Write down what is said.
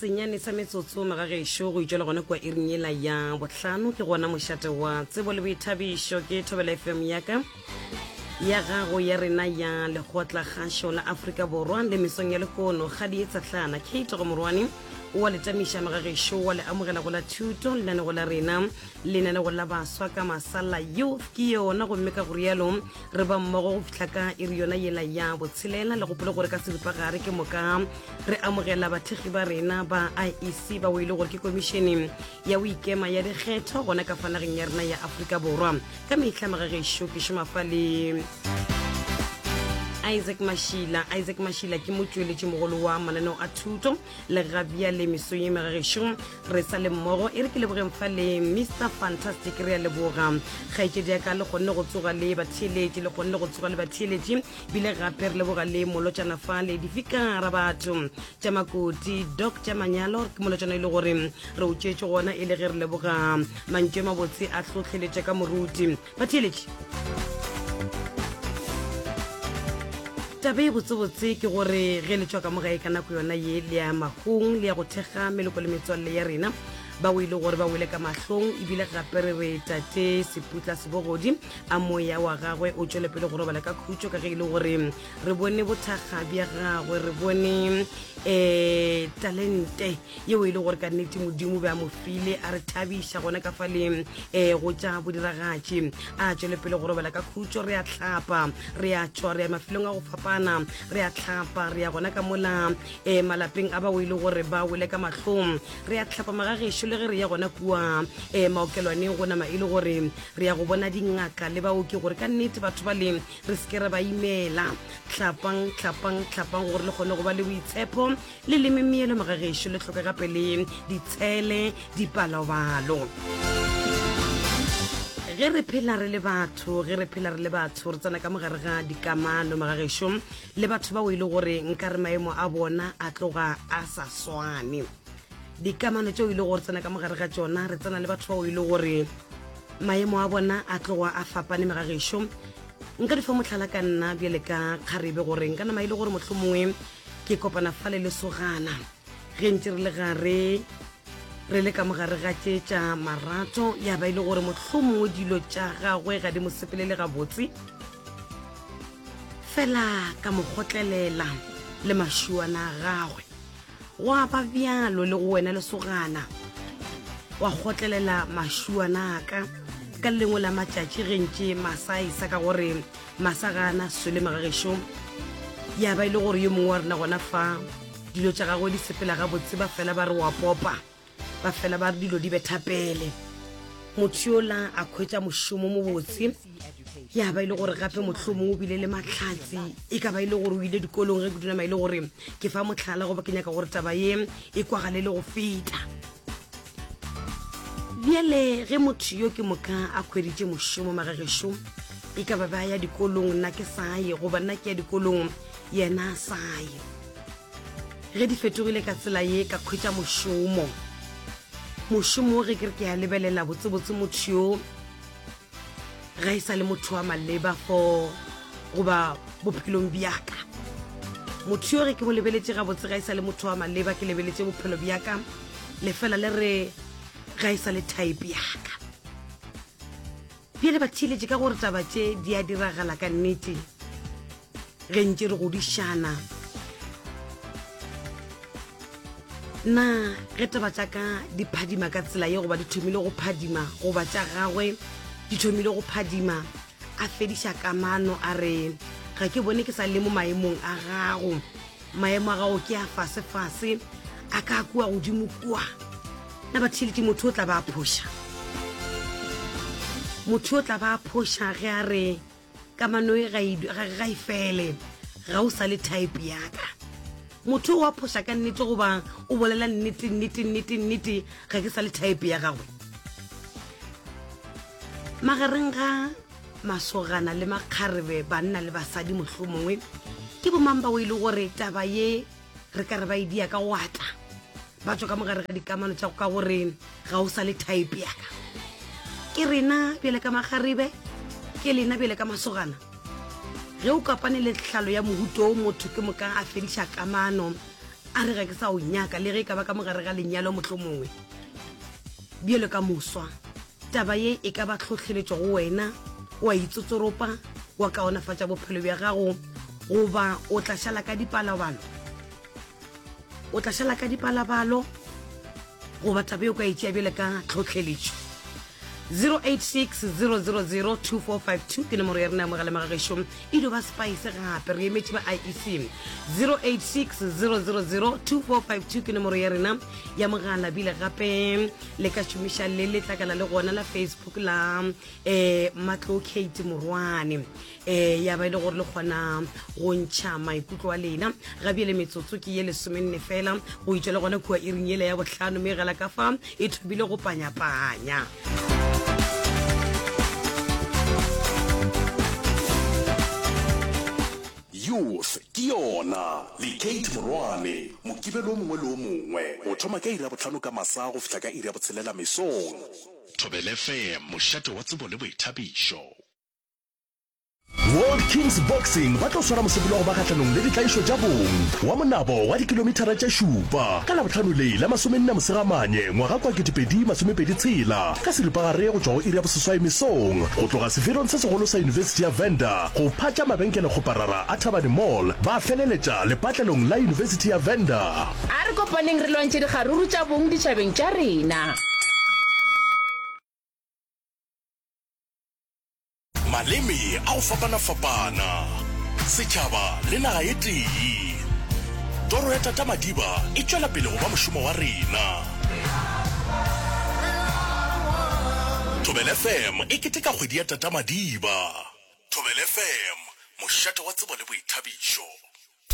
senyane sa metsotso magagešo go itšwa le gona kua iring ela ya bohlano ke gona mošate wa tsebo le boithabišo ke thobela fm yaka ya gago ya rena ya lekgotla kgašo la aforika borwa le mesong ya lekono ga di etsatlana kate go morwane wa letamiša magagešo wa le amogela go la thuto lenanego la rena lenanego la baswa ka masala yo ke yona gomme ka go rialo re ba mmogo go fihla ka e re yona yela ya botshelela le gopole gore ka seripagare ke moka re amogela bathekgi ba rena ba iec ba o e le gore ke komišene ya o ikema ya dikgetho gona ka fanageng ya rena ya aforika borwa ka metlha magagešo ke šomafa le isaac mashila isaac mashila ke motsweletši mogolo wa mananeo a thuto le ga bjale mesong ye megagešo re sa le mmogo e re ke lebogeng fa le mr fantastic re a leboga kgaetšedi ya ka le kgonne go tsoga le batheeletši le kgonne go tsoga le batheeletši bile gape re leboga le molotšana fa le difikara batho tša makoti doc tša manyalo ke molotšana e le gore re o tšeetše gona e le ge re leboga mantšu a mabotse a hlohleletša ka moruti Batheeletši, Taba e botsebotse ke gore ge le tšwa ka mo gae ka nako yona ye le ya magong le ya go thekga meloko le metswalle ya rena ba o e le gore ba wele ka mahlong ebile gape re re tate seputla sebogodi a moya wa gagwe o tšwele pele go robala ka khutšo ka ge e le gore re bone bothakga bja gagwe re bone um talente yeo e le gore ka nnete modimo be a mo file a re thabiša gona ka fa le um go tša bodiragatši a tšwele pele go robela ka khutšo re a tlhapa re a tšwa re ya mafelong a go fapana re a tlhapa re ya gona ka mola um malapeng a bao e le gore ba wele ka mahlong re a tlhapa magagešo le ge re ya gona kua um maokelwaneng go nama e le gore re ya go bona dingaka le baoki gore ka nnete batho ba le re seke ra ba imela tlhapang tlhapang tlhapang gore le kgone go ba le boitshepo Le leme meelo mga gešo le hloka gape le ditshele dipalobalo. Ge re phela re le batho, ge re phela re le batho, re tsena ka mogare ga dikamano mga gešo le batho bao e le gore nka re maemo a bona a tloga a sa swane. Dikamano tšeo e le gore tsena ka mogare ga tšona re tsena le batho bao e le gore maemo a bona a tloga a fapane mga gešo nka di fa motlhala ka nna bjale ka kgarebe gore nka nama e le gore mohlomongwe ke kopana fa le lesogana ge ntse re le gare re le ka mogare ga tše tša marato ya ba e le gore motlho mongwe dilo tša gagwe ga di mo sepelele gabotse fela ka mo gotlelela le mašuana a gagwe go a ba bjalo le go wena lesogana wa gotlelela mašuana a ka ka lengwe la matšatši ge ntše masaisa ka gore masa ga ana sole magagešo ya ba e le gore yo mongwe wa rena gona fa dilo tša gagwe di sepela gabotse ba fela ba re wa popa ba fela ba re dilo di bethapele motho yola a kgwetsa mošomo mobotse ya ba e le gore gape motlhomo o bile le matlhatsi e ka ba e le gore o ile dikolong ge ke dinama e le gore ke fa motlhala goba ke nyaka gore taba ye e kwagalele go feta bjale ge motho yo ke moka a khweditše mošomo magagešo e ka ba ba ya dikolong nna ke sa ye goba nna ke ya dikolong yena a sa ye ge di fetogile ka tsela ye ka khwetša mošomo mošomo ge ke re ke a lebelela botsebotse motho yo ga e sa le motho wa maleba for goba bophelong bjaka motho yo re ke mo lebeletše gabotse ga e sa le motho wa maleba ke lebeletše bophelo bjaka lefela le re ga e sa le type yaka bjale ba theeletše ka gore taba tše di a diragala ka nnete ge ntše re godišana na ge taba tša ka di phadima ka tsela ye goba di thomile go phadima goba tša gagwe di thomile go phadima a fediša kamano a re ga ke bone ke sa le mo maemong a gago maemo a gago ke a fasefase a ka kua godimo kua na ba thiletse motho o tla ba a phoša motho o tla ba a phoša ge a re kamano e ga ga e fele ga o sa le type yaka motho wa phosa ka nnete goba o bolela nnete nnete nnete nnete ga ke sa le type ya gago magareng ga masogana le makgarebe banna le basadi mohlomongwe ke bomang ba o e le gore taba ye re ka re ba e dia ka go atla ba tswa ka mogare ga dikamano tša go ka goreng ga o sa le type yaka ke rena bjale ka magarebe ke lena bjale ka masogana ge o kapane le tlhalo ya mohuto o motho ke moka a fediša kamano a re ga ke sa o nyaka le ge e ka ba ka mogare ga lenyalo motlho mongwe bjalo ka moswa Taba ye e ka ba tlhohleletšo go wena, wa itsotsoropa, wa kaonafatša bophelo bja gago, goba o tla šala ka dipalabalo. O tla šala ka dipalabalo, goba taba ye o ka e tšea bjale ka tlhohleletšo. 086 000 2452 ke nomoro ya rena ya mogala magagešo e dio ba spice gape re emetše ba iec 086 000 2452 ke nomoro ya rena ya mogala bile gape le ka šomiša le letlakala le gona la facebook la um eh, matlo kate morwane um eh, ya ba e le gore le kgona go ntšha maikutlo a lena gabi le metsotso ke ye lesomenne fela go itšwa le gona kua iring yele ya bohlano mme gela ka fa e thobile go panyapanya Youth ke yona, Likate Morwane, Mokibelo o mongwe le o mongwe, go thoma ka iri ya bohlano ka masa go fihla ka iri ya botshelela mesong. Thobela FM, mošate wa tsebo le boithabišo. World Kings Boxing ba tlo swara mosepelo wa go ba kgahlanong le ditlaišo tša bong wa monabo wa dikilomithara tše šupa ka Labohlano le la masomenne Mosegamane ngwaga kua ketepedi masomepedi tshela ka seripagare go tšwa go iri ya boseswai mesong go tloga seferong se segolo sa yunibesithi ya Venda Go phatša mabenkelekgoparara a Thabani Mall ba feleletša lepatlelong la Yunibesithi ya Venda. A re kopaneng re lwantšhe dikgaruru tša bong ditšhabeng tša rena. Maleme a go fapana-fapana, setšhaba le naga e tee. Toro ya Tata Madiba e tšwela pele go ba mošomo wa rena. Thobela FM e keteka kgwedi ya Tata Madiba. Thobelfm, mošate wa tsebo le boithabišo.